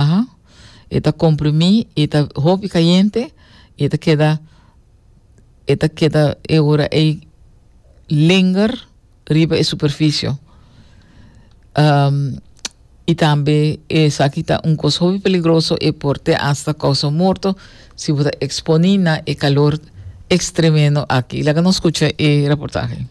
Aha. E ta comprimí, e ta hopi cayente y e ta keda, e ta keda e ora ey linger riba e superficio. Um, y tambe esaki ta un cos hopi peligroso, e por te hasta causa morto si bo ta exponí na e calor extremeno aki. Laga nos scucha e reportaje.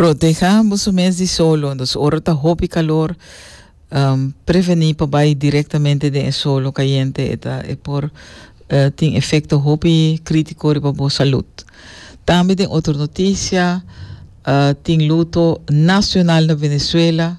Proteha boso mes di solo. Dus ora ta hopi calor, um, preveni pa bai directamente den e solo cayente. E, ta, e por uh, tin efecto hopi critico riba bo salud. Tambe den otro noticia, uh, tin luto nacional na Venezuela.